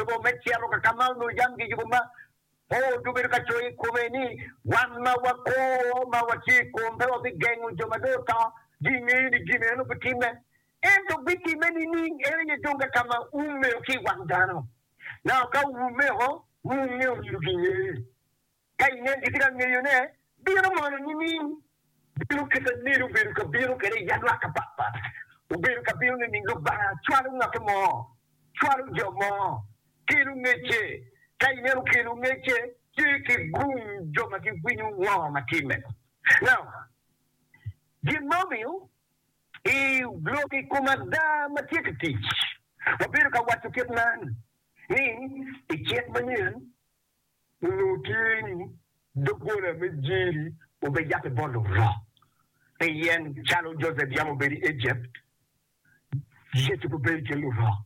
Lobo me cito ka ka ma onongo jami kiyubo ma po onongo bedo ka coyo i kome ni, Wan ma wako ma watye i kom pe wabigengo jo ma dong oto. Gingeyo ni gin eno bitimme. Ento bitimme nining? En aye dong ka ka ma ume ki i wang dano. Naka ume o, wunge omyero gingeye. Ka inen gitye ka ngeyone, bino mono nining? Bino kite nedi obedo ka bino kwede i adwak apat pat? Obedo ka bino nining? Lubanga cwalo ngat mo, cwalo jo mo, kelo ngecce. Ka inen okelo ngecce, tye ki gung jo ma giwinyo ngo ma timme. Now, gin ma omiyo i lok i kom ada ma tye ka tic, wabedo ka waco kit man ni, i cik manyen, Onongo tye ni doggola me Jiri obed yap i bot Lubanga, pien calo Josep yam obedo i Ejipt, Yecu bene bedo i kin Lubanga.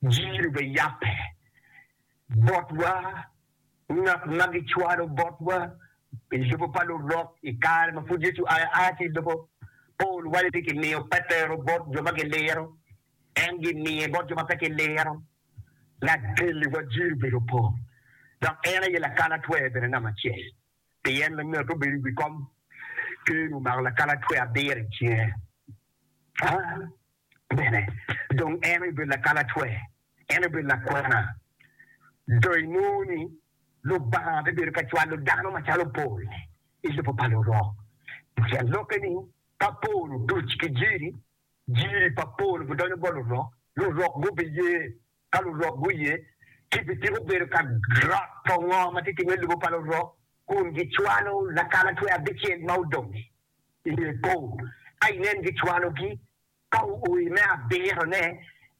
Jiri obed yape botwa, ngat ma gicwalo botwa i lobo pa Lurok i kare ma pud Yecu aye aa ki i lobo. Pol waco ni kimiyo Petero bot jo ma giliro, en gimiye bot jo ma pe giliro. Lagelli wajiri obedo opor, dok en aye lakalatwer bene namba acel. Pien me ngete obedo i wi kom, Ker omako lakalatwer abiro i cinge. Bene, dong en aye obedo lakalatwer, en aye obedo lakwena. Do inongo ni Lubanga bibedo ka cwalo dano macalo pol i lobo pa lurok? Pien lokke ni, Ka pol otuc ki jiri, Jiri pa pol gudonyo bot lurok, lurok gubiye. Ka lurok guye, kipi ciko bedo ka roto ngo ma tye ki me lobo pa lurok, kun gicwalo lakalatwe abicel ma odong-ngi i nge pol. Ka inen gicwalogi, ka oo i me abiro-ne,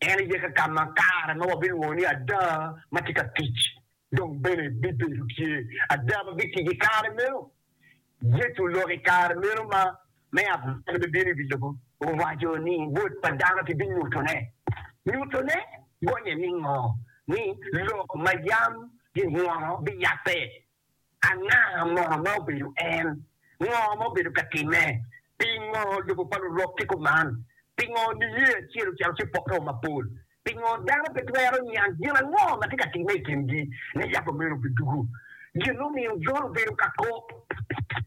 en aye ka ka ma kare ma wabilwongo ni ada ma tye ka tic Dong bene bibedo tye ada ma bitye ki kare meno. Yecu lok i kare meno ma me abalo me bino i wi lobo, owaco ni Wod pa dano kibinyutone. Nyutone gonye ningo? Ni lok ma yam gingwono biyabbe. Anga mono ma obedo en? Ngo ma obedo ka timme? Pingo lobo pa lurok ki kuman? Pingo niye acel ocalo ki pokke o mapol? Pingo dano pe twero niang gin ango ma tye ka timme i kingi? Ni yako meno bidugu. Gin mumiyo Jon obedo ka kok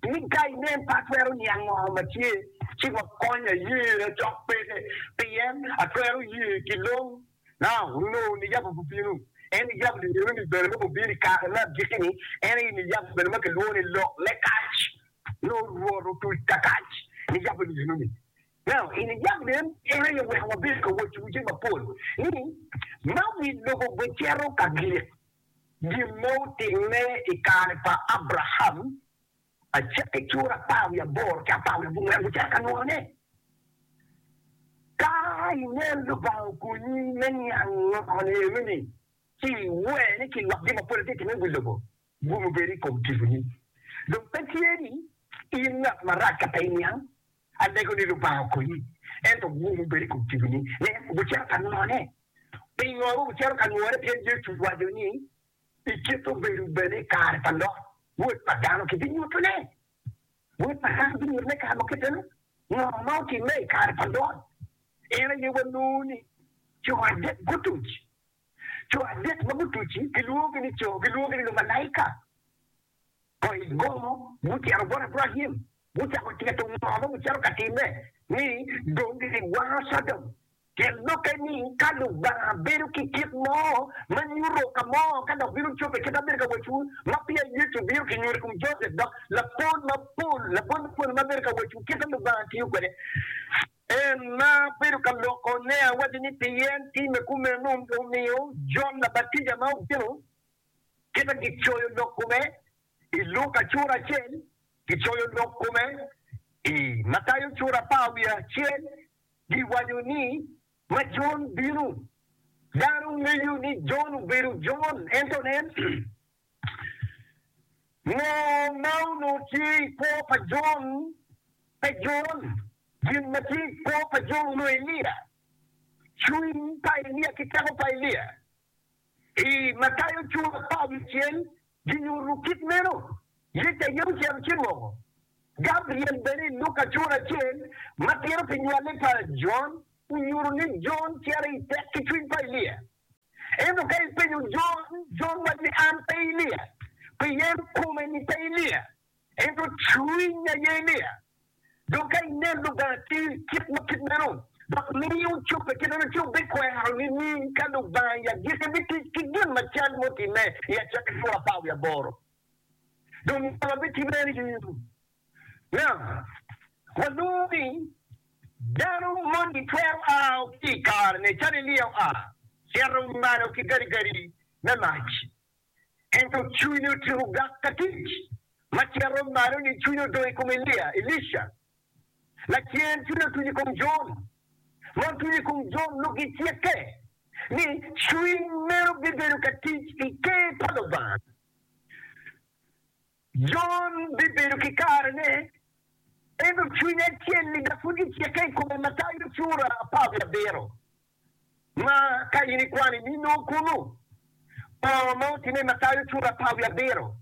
ni, Ka inen, pe atwero niang ngo ma tye, ci wakony aye, acok peke, pien atwero ye ki long. Ka onongo niyabo bubino, en niyabo liyeni-ni bene ma gubino i kare me agikki-ni, en aye niyabo bene ma kilwongo ni lok me kac. Nongo Rwot otuc ka kac, niyabo liyeni-ni. Nano, i niyabo liyeni, en aye oweko wabedo ka wacciwu jami mapol, ni, Ma wi lobo bicito ka gik, gin ma otimme i kare pa Abraim. Acakki ki ur apar wiye aboro ki apar wiye abongwen gucito ka nuru ni, Ka ingel Lubanga okonyi me niang ngone eni, ci iwer ni kilok gin mapol atye timmi i wi lobo, gumo bedo i kom tiponi. Dong pe tye ni in ngat marac ka pe iniang. Alego ni Lubanga okonyi, ento gumo bedo i kom tiponi. Ne, gucito ka nurone. Pingo wucito ka nurone? Pien Yecu owaco ni, I kite obedo bene i kare pa lok, Wod pa dano kibinyuto ne. Wod pa dano binyuto ne kare mo kite-nu. Ngo ma otimme i kare pa Lot? En aye wanongo ni co adek gutuc. Co adek ma gutuc-ci gilwongogi ni co, gilwongogi ni lumalaika. To i gomo, gucito bot Abraim, gucako tito ngo ma gucito ka timme, ni dong giwango Codom. Pien lokke ni ka Lubanga bedo ki kit mo ma nyuto ka mo ka dok bino cobbe kit ma abedo ka wacciwu, ma peya Yecu bino ki nyuto i kom Josep, dok lapor mapol, lapor mapol ema bedo ka wacciwu kit ma Lubanga tiyo kwede. En ma bedo ka loko ne awaco ni pien timme kumeno omiyo Jon Labatija ma obino. kite gicoyo lok kome i Luka cura acel, gicoyo lok kome i Matayo cura apar wiye acel, giwaco ni, Ma Jon bino, dano ngeyo ni Jon obedo Jon, ento nen, ngo ma onongo tye i kwo pa Jon? Pe Jon, gin ma tye i kwo pa Jon onongo Elia, cwiny pa Elia ki teko pa Elia. I Matayo cura apar wiye acel, kinyutu kit meno. Yecu aye ocito ci moko Gabriel. Bene i Luka cura acel ma tito pi nywale pa Jon, onyutu ni Jon cito i tek ki cwiny pa Elia. Ento ka ipenyo Jon, Jon waco ni, An pe Elia, pien kome ni pe Elia. Ento cwiny a Yeremia dong ka inen Lubanga tye kit ma kit meno dok miyo cobbe kit meno, ci wubikwero nining ka Lubanga i agikki bitic ki gin macal mutimme i acakki liro apar wiye aboro? Dong ngolo ma bitimme ni in nga? Walongo ni dano moni twero ao ki i karene calo Elia oa, cito malo ki gadigadi me mac. Ento cwinye otyeko gak ka tic. Macito malo-ni, cwinye odong i kom Elia, Elisha. Lacen, cwinye otuc i kom Jon. Ma otuc i kom Jon lok gicikke ni cwiny meno bibedo ka tic i Ker pa Lubanga. Jon bibedo ki karene, ento cwiny acel-li dok pud gicikke i kome, Matayo cura apar wiye abiro. Ma ka in ikwano i nino kunu, bongo ma otimme ma tayo cura apar wiye abiro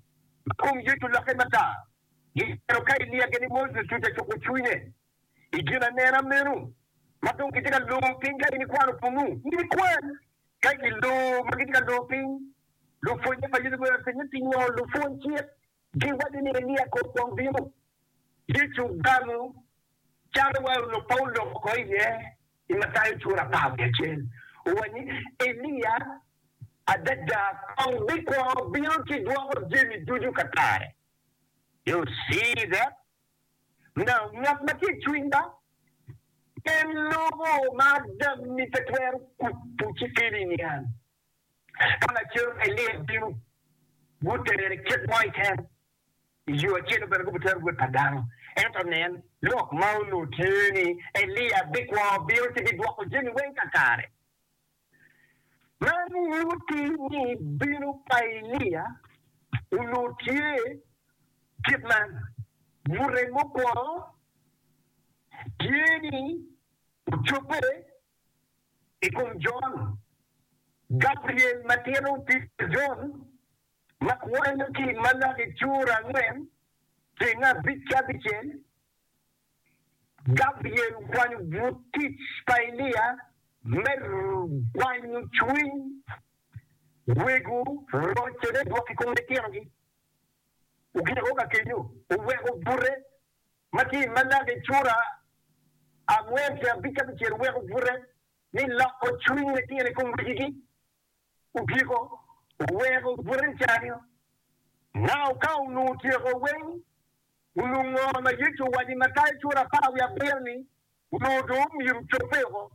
ma kom yec olokke mada, gitero ka ilyege ni Moses tye ka cuko cwinye i ginanena meno ma dong kitye ka lor piny ka in ikwano kunu. In ikwan ka i lor ma gitye ka lor piny. Lupwonnye pa Yecu guweko atir ni, Pingo lupwony cik giwaco ni Elia kong kwong bino? Yecu ogamo calo wa onongo Paulo oko iye. I Matayo cura apar wiye acel owaco ni, Elia adada kong bikwongo bino ci dwoko jami ducu ka kare. You see that? Now, ngat ma tye i cwiny ba pe lubo ma adammi pe twero kuto ci kelo i niang. Ka lacen Elia bino, gutere kit mo keken, I yo acel-lu bene gubitero Wod pa dano. Ento nen, lok ma onongo tye ni Elia bikwo, bino, ci bidwoko jami weng kakare. Man nyuti ni bino pa Elia onongo tye kit man, Bute mukwongo tye ni ocobbe i kom Jon, Gabriel ma tito pi Jon. ma kwanyo ki i Malaki cura angwen ceng abic ki abicel, Gabriel okwanyo but tic pa Elia me gwanyo cwiny wego rocone dwok i kom litinogi. Ogikke ka kenyo, oweko bute ma tye i Malaki cura angwen ceng abic ki abicel, oweko bute ni loko cwiny litino i kom wegigi. Otyeko oweko bute cani-o. Nao ka onongo tyeko weng, onongo ngo ma Yecu owaco i Matayo cura apar wiye abiro ni onongo dong omyero ocobbe woko?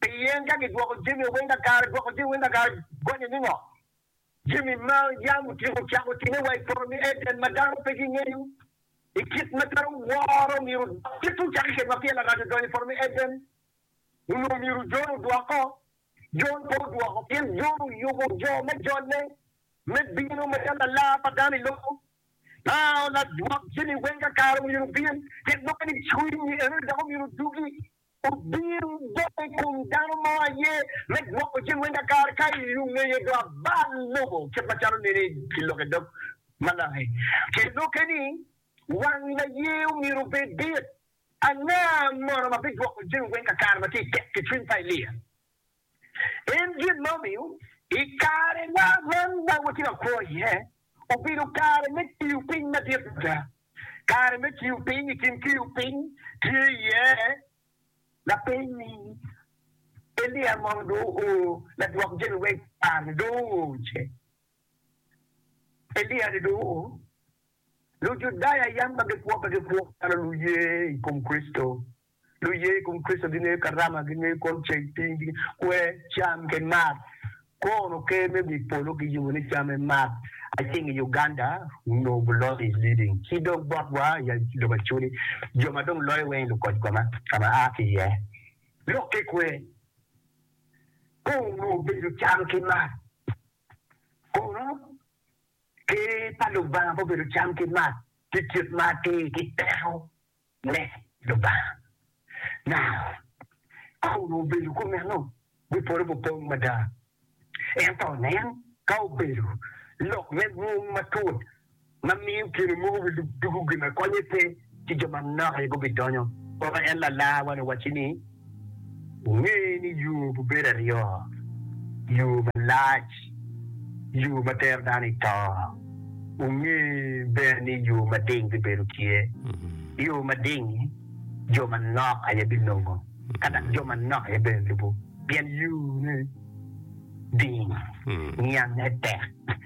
Pien ka gidwoko jami-o weng kakare, dwoko jami weng kakare gonye ni ngo? Jami ma yam otyeko cako time wa i poto me Eden ma dano pe gingeyo i kit ma twero woro myero odok. Kit-tu cake kedwa pien Larac odonyo i poto me Eden, onongo myero ojone odwoko. Jon pe odwoko, pien Jon oyubo jo me jolle me bino macalo lalar pa dano i lobo. Aa, ladwok jami weng kakare omyero obin, pien dok en i cwinyi enoni dok omyero odugi. Obin dok i kom dano mo aye me dwoko jami weng kakare, ka i ongeye do abal lobo, kit macalo nene i lok i dog Malaki. Pien lok eni, wang laye omyero obed dit, Anga mono ma bigwoko jami weng kakare ma tye tek ki cwiny pa Elia? En gin ma omiyo i kare wa man ma watye ka kwo iye obedo kare me tiyo piny madit mada. Kare me tiyo piny, i kin tiyo piny tye iye lapeny ni, Elia mono dong oo ladwok jami weng kakare-ni dong oo ce? Elia-ni dong oo? Lujudaya yam ma gikwo pe gikwo calo luye i kom Kricito. Luye i kom Kricito gingeyo Karama, gingeyo kwon ceng, piny ki kwer, cam ki mat. Kono Ker me wi polo giyubo ni cam me mat aceng i Uganda onongo bulot i Leading ci dong botwa ya i lobo Acholi jo ma dong loyo weng i lukoc koma ka ma aa ki iye. Lok ki kwer kong onongo obedo cam ki mat. Kono Ker pa Lubanga pe obedo cam ki math, tye kit ma atir ki teko me Lubanga. Nao ka onongo obedo ki omeno, wi polo obupong mada. Ento nen, ka obedo lok me mwong matut ma miyo kine mogo wi lub dugu gin ma konye pe, ki jo manok aye gubidonyo. Weko en lalarwa-ni owacci ni, Wunge ni yo bibedo aryo, yo malac, yo ma tero dano i to. Wunge bene ni yo mading bibedo tye. Yo mading-ngi jo manok aye bilongo, ka dok jo manok aye bene lubo, pien yone ding, niange tek.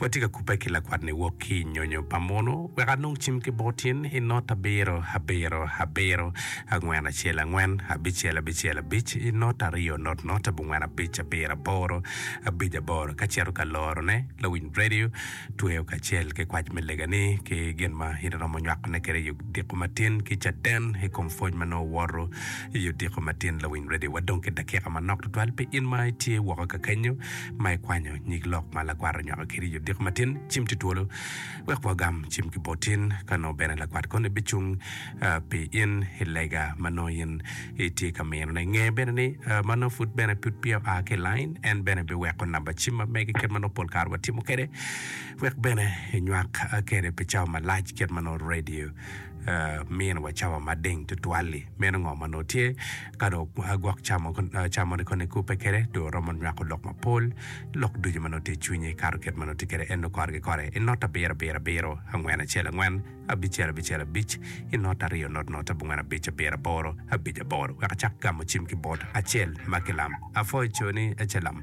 Watye ka kubbe ki lakwat-ni wok ki i nyonyo pa muno wek anong cim ki bot in i not abiro abiro abiro, angwen acel angwen, abicel abicel abic, i not aryo not not, abongwen abic abiro aboro, abic aboro. Ka cito ka lorone, lawiny redio tweyo kacel ki kwac me lega-ni ki gin ma in iromo nywakone kwede i odiko matin ki Caden i kom pwoc ma nongo woto i odiko matin. Lawiny redio, wadong ki dakika manok tutwal pi in ma itye woko ka kenyo. ma ikwanyo nyig lok ma lakwat onywako kede i odiko matin, cim tye twolo wek wagam cim ki bot in. Ka nongo bene lakwat koni bicung pi in i lega ma nongo in itye ka minone, nge bene ni ma nongo pud bene pud peya oa ki i lain. En bene biweko namba cim ma mege kit ma nongo pol kare watimo kwede wek bene enywak kwede pi cawa malac kit ma nongo redio miniwa cawa mading tutwal-li. Meno ngo ma nongo tye? Ka dong gwok camone koni kubbe kwede, dong romo nywako lok mapol, lok ducu ma nongo tye i cwinye, kato kit ma nongo tye kwede en nongo kore ki kore. I not abiro abiro abiro, angwen acel angwen, abicel abicel abic, i not aryo not not, abongwen abic abiro aboro, abic aboro. Wek acak gamo cim ki bot acel ma kilam. Apwoyo coni, Ecelam.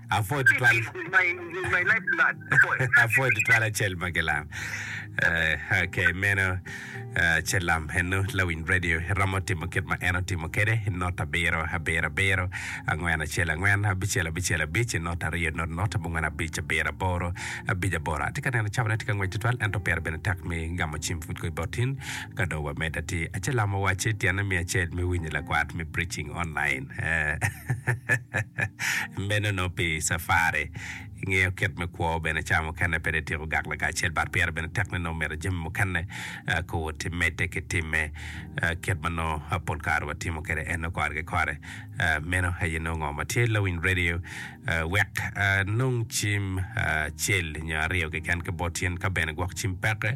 Apwoyo tutwal. Apwoyo tutwal acel ma gilam. Eh, ok, meno eh, acel lam eno lawiny radio romo timo kit ma en otimo kede i not abiro abiro abiro angwen acel angwen abicel abicel abic i not aryo not not abongwen abic abiro aboro abic aboro atye ka neno cabone tye ka ngwec tutwal ento pire bene tek mi gamo cim pud ko i bot tin ka dong wamed ati acel lam owacci tyene mi acel mi winyi lakwat mi preaching online Meno nongo pi cafari. Ingeyo kit me kwo bene cawa mukene pe ityeko gak lagac acel but pire bene tek ni nongo mito jami mukene ko woti medde ki timme kit ma nongo pol kare watimo kwede eno kore ki kore. Meno aye nongo ngo ma tye lawiny radio wek anong cim acel nyo aryo keken ki bot in ka bene gwok cim peke.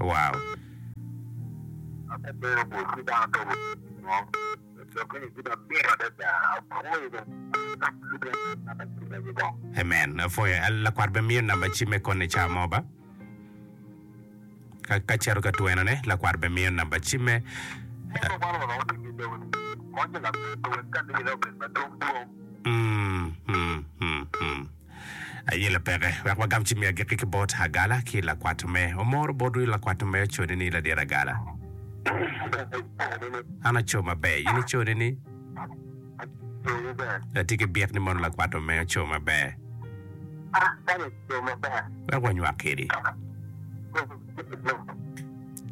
Wow. Amen, apwoyo. Lakwat bemiyo namba cim me koni cawa mo ba? Ka cito ka twenone, lakwat bene miyo namba cimme. Aye lapeke, wek wagam cimme agikki ki bot Agala ki lakwat me. Omoro bot wi lakwat me ocone ni, Ladit Agala, an aco maber, in icone ni, Atye ki byek ni mono lakwat me oco maber. wek wanywak kwedi.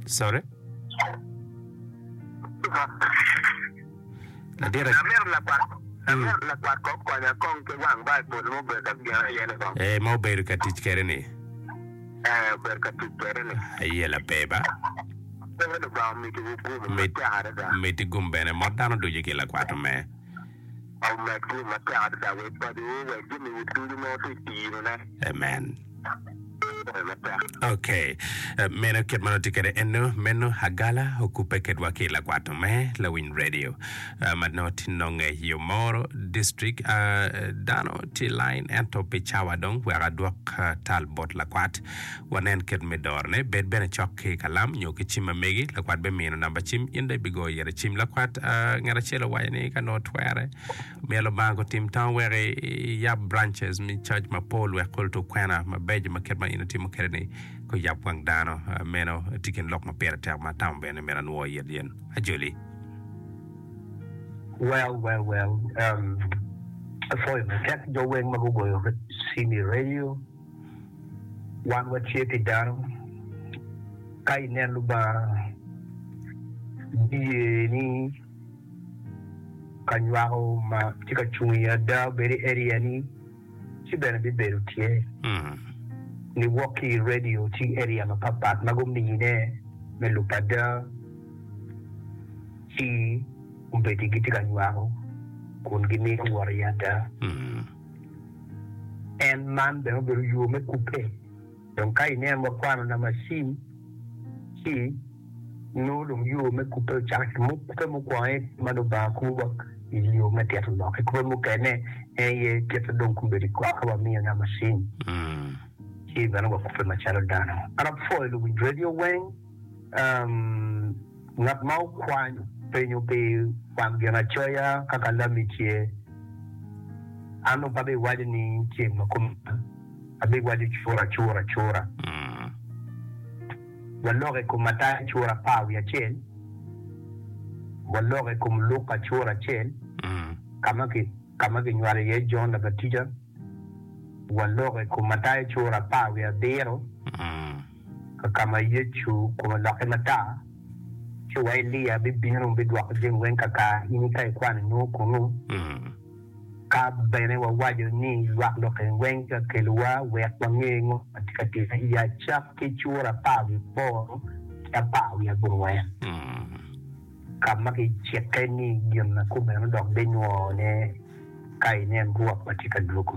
Sorry. Ee, ma obedo ka tic kwede-ni. Aye lape ba. Mit, mit gum bene. Mot dano ducu ki lakwat-to me. Amen tye matek adada wek badu wek gimiyi ducu mo ti tiro ne. Amen. Pore matek. Ok, meno kit ma noti kede eno meno agala okubbe kedwa ki lakwatu me lawiny radio ma nongo ti nonge i Omoro district. Dano ti line ento pi cawa dong wek adwok tal bot lakwat Wanen kit me dorone, bed bene cok ki i kalam nyo ki cim ma megi. Lakwat bimino namba cim, in dong ibigoyo yet i cim. Lakwat ngat acel owaco ni ka nongo twere, myero Lubanga gutim tang wek iyab branches me coc mapol wek kulu tuk kwena mabeco ma kit ma in itimo kwede-ni guyab wang dano. Meno tye i kin lok ma pire tek ma atamo bene ni myero anwo i it yen ajoli. Well, well, well, um, apwoyo matek jo weng ma gugoyo cim i radio. Wan watye pi dano. Ka inen Lubanga, ibiye ni ka nywako ma tye ka cung i ada obed i area-ni, ci bene bibedo tye. Ni wok ki i radio, tye area mapatpat ma gumine me lub ada, ci obedi gitye ka nywako kun gimito wot i ada. en man bene obedo yo me kubbe. Dong ka ineno wakwano Namashi ci nongo dong yo me kubbe ocako ki mo, kubbe mukwongo aye ma Lubanga kubo wa i yo me tito lok ki kubbe mukene en aye kite dong kun bedo i kor ka wamiyo Namashi ci bene wakubbe macalo dano. An apwoyo luwinj redio weng. Ngat ma okwany penyo pi kwang Ginacoya ka kalami tye, an dong pe abiwaco ni ceng ma kuman, abiwaco cura cura cura. Walok i kom Mataya cura apar wiye acel, walok i kom Luka cura acel ka ma kinywalo iye Jon Labatija, walok i kom Mataya cura apar wiye abiro, Kakama Yecu kome olokke matar, ci wa Elia bibino bidwoko jami weng kaka in ika ikwano nongo kunu. Ka bene wawaco ni lwak lok eni weng tye ka kelowa wek wange ngo ma tye ka timere i acak ki cura apar wiye aboro ki apar wiye abongwen, ka ma kicikke ni gin ma kumeno dok binywone ka inen Rwot ma tye ka dwogo.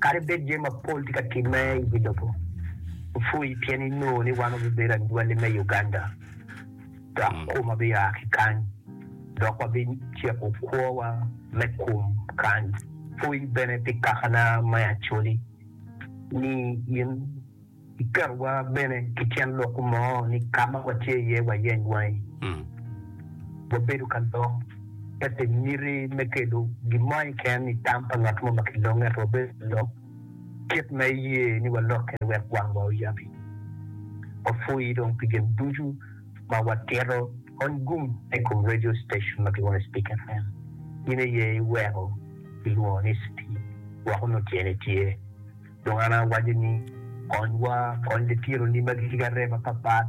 Kadi bed jami mapol tye ka timme i wi lobo, wupwoyi pien inongo ni wan wabibedo anywali me Uganda dok kom abiya ki kany dok wabiciko kwowa me kom kany. Pwoyi bene pi kakana me Acholi ni in. Kiketowa bene ki cen lok mo ni ka ma watye iye wayeny wangi. Wabedo ka lok pe pi miti me kelo gin mo keken i tam pa ngat mo ma kilonge, ento wabedo ka lok kit ma iye ni walok kwede wek wangwa oyabi. Wapwoyi dong pi gin ducu ma watito. Kony gum ma i kom radio station ma kilwongo ni Speak FM. In aye iweko kilwongo ni Speak woko nongo tyene tye. Dong an awaco ni, Konywa, kony litironi ma gitye ki arem mapatpat,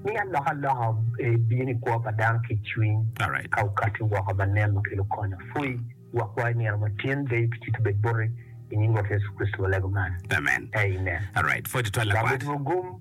mi alokaloka ebin i kwo pa dano ki i cwiny, ka okatti woko ma nen ma kelo kony. Apwoyi wokwa i nino matin, deyo pi cito bed boti, i nying Rwot Yecu Kricito walego man, Amen. Amen. Lwak wotwu ogum.